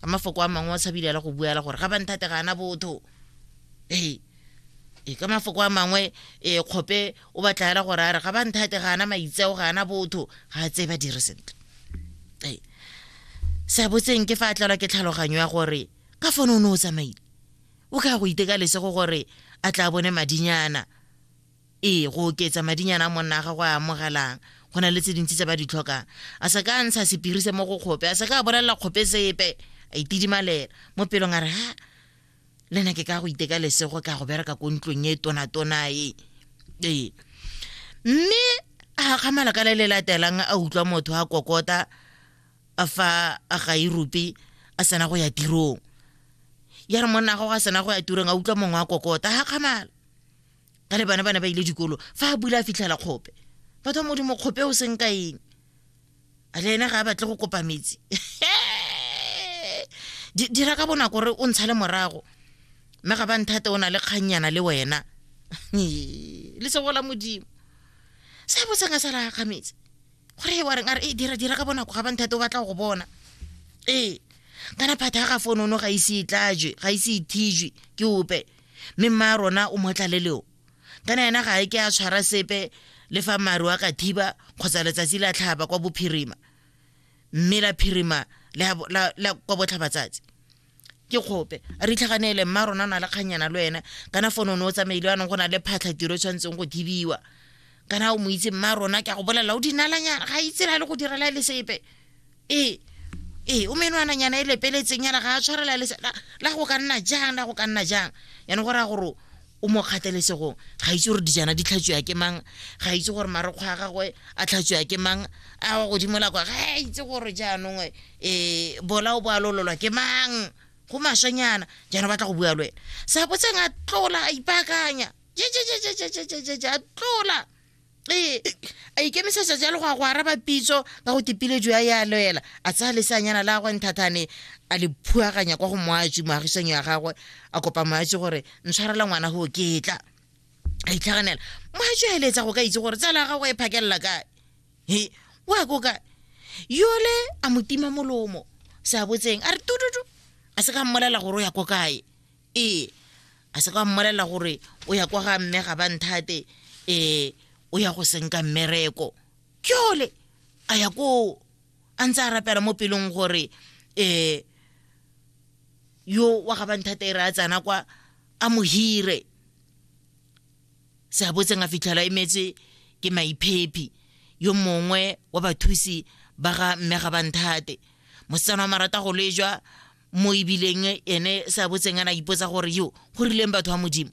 ka mafoko a mangwe wa tshabilela go buela gore ga ba nthate ga ana botho ee e ka mafoko a mangwe e kgope o batlaela gore a re ga ba nthate ga ana maitseo ga ana botho ga a tseye ba dire sentle ee se a botseng ke fa a tlelwa ke tlhaloganyo ya gore ka fone o ne o tsamaile o ka go iteka lesego gore a tla bone madinyana ee go oketsa madinyana a monna a gago a amogelang go na le tse dintsi tse ba di tlhokang a se ka a ntsha sepiri se mo go kgope a se ka a bolelela kgope sepe a itidimalela mo pelong a re ha le nna ke ka go iteka lesego ka go bereka ko ntlong e tonatona e ee mme a kgamala ka le le latelang a utlwa motho a kokota a fa a ga irope a sena go ya tirong ya re monna gago a sena go ya tirong a utlwa mongwe a kokota ga kgamala ka le bana bana ba ile dikolo fa a bula a fitlhela kgope batho ba modimo kgope o seng ka eng a le ene ga a batle go kopa metsi dira ka bonako gore o ntsha le morago mme ga ba nthate o na le kgannyana le wena le segola modimo sa botseng a sa la ga metsi gore e wareng a re e dira dira ka bonako ga ba nthate o batla go bona ee kana phata ga fonono ga ise e tlajwe ga ise e thijwe ke ope mme mma rona o mo tlaleleo kana ena ga e ke a tshwara sepe le fa maru a ka thiba kgotsa letsatsi la tlhaba kwa bophirima mme la phirima la kwa botlhabatsatsi ke kgope a re itlhaganele mma rona na le kganyana le wena kana fone o ne o tsamaile yanong go na le phatlha tiro e tshwanetseng go thibiwa kana o mo itse mma rona ke a go bolelela o dinalanyana ga itsela le go direla le sepe ee ee o menwananyana e lepeletseng yana ga a tshwarela le la go ka nna jang la go ka nna jang yana go raya gore o mo kgatelesegong ga itse gore dijana di tlhatswiwa ke mang ga itse gore marekgwa a gagwe a tlhatswiwa ke mang a wa godimo la kwa ga a itse gore jaanong um e, bola o bo a lololwa ke mang go maswanyana jaanong batla go bua le wena sa botseng a tlola a ipaakanya jejejejejejejeje a tlola ee a ikemisetsa jalo go ya go araba pitso ka go tipile jo ya ya loela a tsaya leseanyana la gagwe nthathane a le phuaganya kwa go moatsi moagisanyo ya gagwe a kopa moatsi gore ntshwarela ngwana go ketla a itlhaganela moatsi a eletsa go ka itse gore tsala ya gagwe e phakelela kae he wa ko kae yole a mo tima molomo se a botseng a re tututu a se ka mmolela gore o ya ko kae ee a se ka mmolelela gore o ya kwa ga mme ga ba nthate um o ya go senka mmereko kjole a ya koo a ntse a rapela mo pelong gore um yo wa ga ba nthate e re a tsana kwa a mo hire se a botseng a fitlhela e metse ke maiphephi yo mongwe wa bathusi ba ga mme ga ba nthate mosetsana wa marata go lejwa mo ebileng ene sa botseng a na ipotsa gore yo go rileng batho ba modimo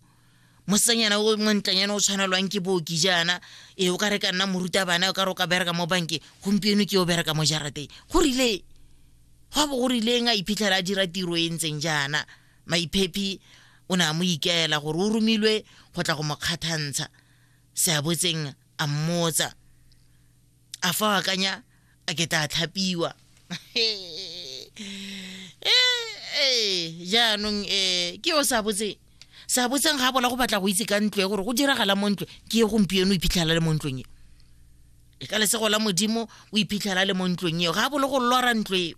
mosetsanyana o montlanyana o tshwanelwang ke booki jaana e o ka re ka nna morutabana o ka re o ka bereka mo banke gompieno ke o bereka mo jarateng go rile gwa bo go rileng a iphitlhela a dira tiro e ntseng jaana maiphephi o ne a mo ikaela gore o romilwe go tla go mo kgathantsha seabotseng a mmotsa a fa o akanya a ke tla tlhapiwa ee jaanong um ke yo sa botseng sa botseng ga bola go batla go itse ka ntlo e gore go diragala mo ntlo ke ye gompieno o iphitlhela le mo ntlong e e ka lesego la modimo o iphitlhela le mo ntlong eo ga bolo go lora ntlo eo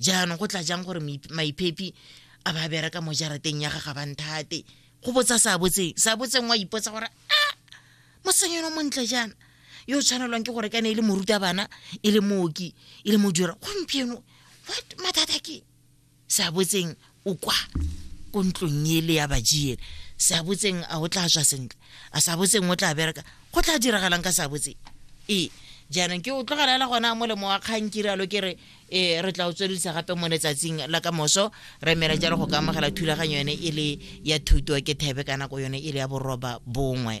jaanong go tla jang gore maiphepi a ba bereka mo jarateng ya ga ga banthate go botsa sa botseng sa botseng wa ipotsa gore a ah, mosenyeno montle jaana yo o tshwanelwang ke gore ka ne e le moruta bana e le mooki e le modira gompieno what mathata ke sa botseng o kwa ko ntlong ele ya bajiele sa botseng a o tla tswa sentle a sa botseng o tla bereka go tla diragalang ka sa botseng ee jaanong ke o tlogelela gona molemo wa kgang ke rialo ke re um re tla o tswelelisa gape mo letsatsing la ka moso re emela jalo go ka amogela thulaganyo yone e le ya thuto ke thebe ka nako yone e le ya boroba bongwe